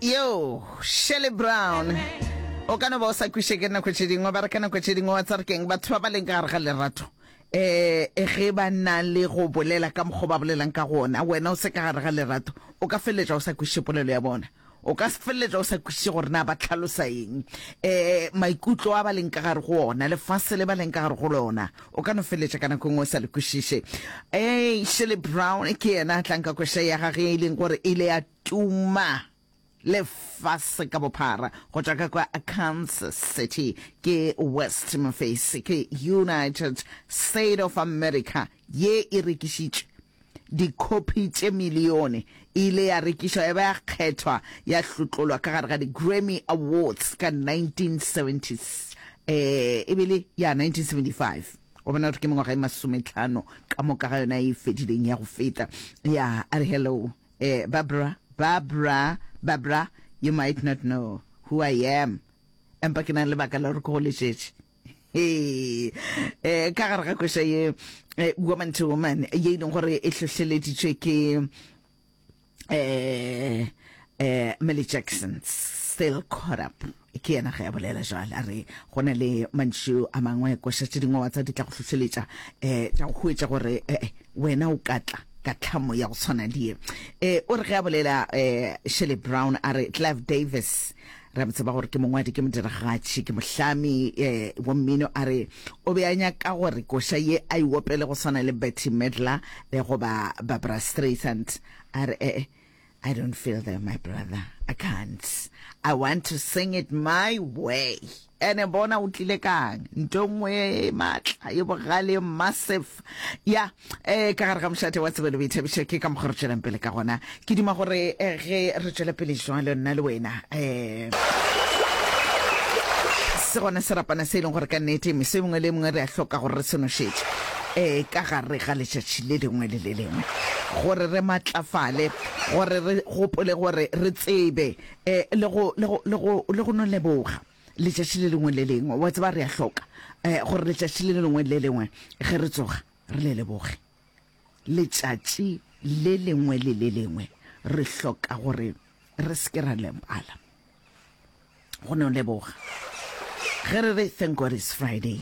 yo shelley brown o ka no ba o sa kwiše ke nako tše dingwe ba re ka nako tše dingwe wa tsare keng batho ba ba leng ka gare ga lerato um ge ba na le go bolela ka mokgwa ba bolelang ka gona wena o se ka gare ga lerato o ka feleletša o sa kwiše polelo ya bona o ka feleletša o sa kwiše gore na ba tlhalosa eng um maikutlo a ba leng ka gare go ona lefase le ba leng ka gare go lona o ka no feletša ka nako ngwe o sa le kwešiše ee shirley brown ke yena a tlang ka kwešo ya gage e leng gore e ile ya tuma lefase ka bophara go tšwa ka kwa kansas city ke west mafase ke united state of america ye e rekišitše Dikhopi tše milione e ile ya rekišwa ya ba ya kgethwa ya hlotlolwa ka gare ga di-Grammy Awards ka 1970, e be le ya 1975. O bona gore ke mengwaga e masometlhano ka moka ga yona e fedileng ya go feta. Ya a re, Hello, eh, Barbara, Barbara, Barbara, you might not know who I am, empa ke na le lebaka la gore ke go letšetše. Ee, eh, ka gare ga kwešo ye eh, woman to woman ye e leng gore e hlohleleditšwe ke eh eh Millie Jackson still caught up ke yena ge a bolela jwale a re go na le mantšu a mangwe koša tše dingwe wa tsa di tla go hlohleletša um tša go hwetša gore eh, eh, wena o ka tla ka tlhamo ya go tshwana le ye um o re ge a bolela um shelley brown a re clive davis Re a mo tseba gore ke mongwadi, ke modiragatši, ke mohlami um wa mmino. A re o be a nyaka gore koša ye a e opele go swana le Bette Midler le goba Barbra Streisand. A re ee, I don't feel there, my brother. I can't. I want to sing it my way. Ene bona o tlile kang, nto nngwe e matla, e bogale, e massive. Ya, eh, ka gare ga mošate wa tsebelo boithabišo, ke ka mokgwa re tšwelang pele ka gona. Ke duma gore eh, ge re tšwela pele jwalo, nna le wena, eh, se gona serapana se e leng gore ka nnete meso e mengwe le e mengwe re a hloka gore re se nošetše um ka gare ga letšatši le lengwe le le lengwe gore re matlafale gore re gopole gore re tsebe E, le go, le go, le go, le go no leboga letšatši le lengwe le lengwe. Wa tseba, re a hloka e, gore letšatši le lengwe le lengwe ge re tsoga re le leboge. Letšatši le lengwe le le lengwe re hloka gore re se ke ra lebala go no leboga. Ge re re thank God it's Friday,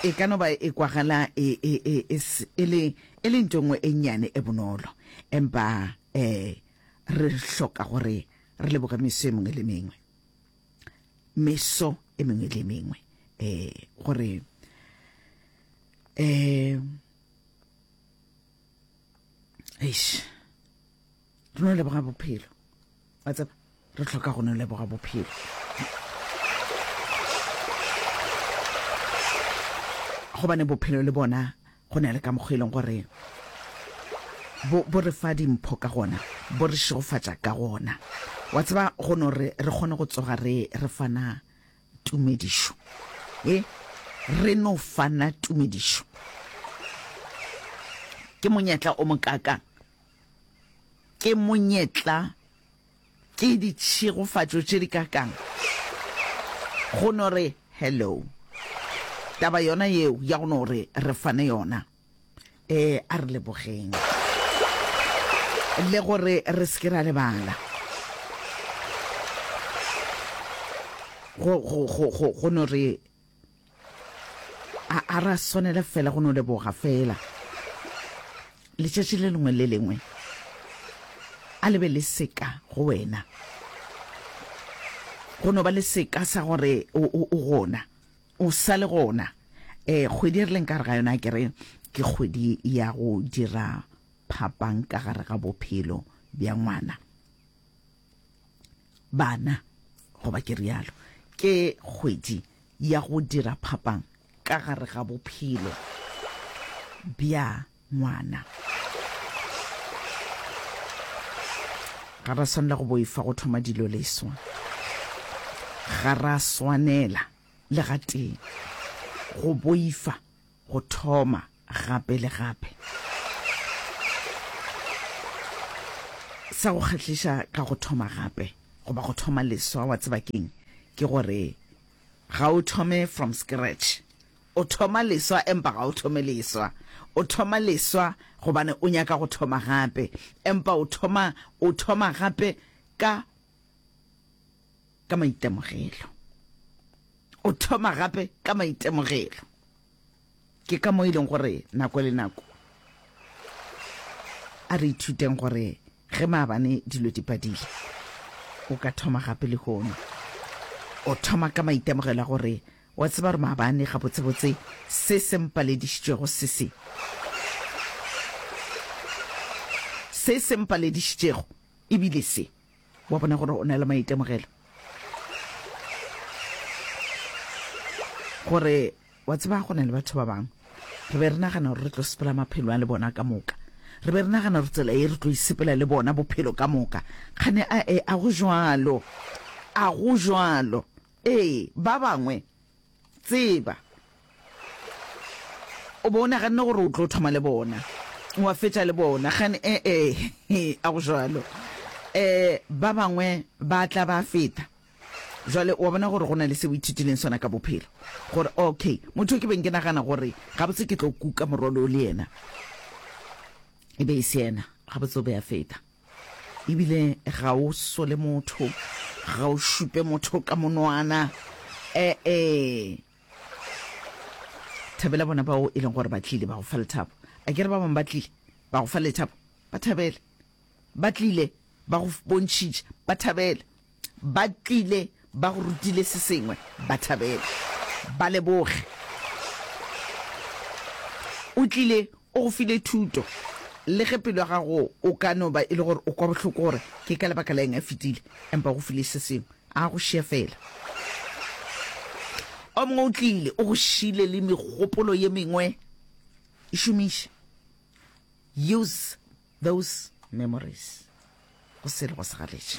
e ka no ba e kwagala e, e, e, e, e le, e le nto nngwe e nnyane e bonolo, empa Ee, re hloka gore re leboge meso e mengwe le mengwe, meso e mengwe le mengwe, eh, gore eh, eish, re no leboga bophelo, wa tseba re tlhoka go no leboga bophelo gobane bophelo le bona go na le ka mokgwa e leng gore bo re fa dimpho ka gona bo re šegofatša ka gona wa tseba go no re re kgone go tsoga re re fana tumedišo e re no fana tumedišo ke monyetla o mokaka ke monyetla Ke ditšhegofatšo tše di ka kang go no re hello. Taba yona yeo ya go no re re fane yona, e a re lebogeng le gore re se ke ra lebala go no re a a ra swanele fela go no leboga fela letšatši le lengwe le lengwe a lebe le seka go wena go no ba le seka sa gore o gona o sa le gona um kgwedi e re leng ka re ga yona ke re ke kgwedi ya go dira phapang ka gare ga bophelo bja ngwana bana goba ke rialo ke kgwedi ya go dira phapang ka gare ga bophelo bja ngwana ga ra swanela go boifa go thoma dilo leswa ga ra swanela le gatee go boifa go thoma gape le gape. Sa go kgahliša ka go thoma gape goba go thoma leswa, wa tseba keng? Ke gore ga o thome from scratch. O thoma leswa empa ga o thome leswa. O thoma leswa gobane o nyaka go thoma gape, empa o thoma, o thoma gape ka ka maitemogelo. O thoma gape ka maitemogelo. Ke ka mo e leng gore nako le nako a re ithuteng gore ge maabane dilo di padile o ka thoma gape le hono o thoma ka maitemogelo a gore wa tseba gore maabane gabotsebotse se se mpaledišitšego se se se se mpaledišitšego ebile se wa bona gore o na le maitemogelo gore wa tseba go na le batho ba bangwe re be re nagana gore re tlo sepela maphelo a le bona ka moka re be re nagana gore tsela e re tlo isepela le bona bophelo ka moka kgane a e a go jalo a go jalo ee ba bangwe Tseba. O be o naganne gore o tlo thoma le bona, wa fetša le bona, gane? E-e, a go jalo. Um, ba bangwe ba tla ba feta. Jwale wa bona gore go na le se o ithutileng sona ka bophelo, gore, okay, motho o ke beng ke nagana gore gabotse ke tlo kuka morwalo o le yena, e be e se yena, gabotse o be a feta. Ebile ga o sole motho, ga o šupe motho ka monwana. E-e. Thabela bona bao e leng gore ba tlile, ba go fa lethabo. A ke re ba bangwe ba tlile, ba go fa lethabo? Ba thabele. Ba tlile, ba go bontšhitše, ba thabele. Ba tlile, ba go rutile se sengwe. Ba thabele. Ba leboge. O tlile, o go file thuto. Le ge pelo ya gago o ka no ba e le gore o kwa bohloko gore ke ka lebaka la eng a fetile, empa o go file se sengwe. A go šia fela. O mongwe o tlile, o go šile le megopolo ye mengwe. E šomiše. Use those memories. Go se le go segaletše.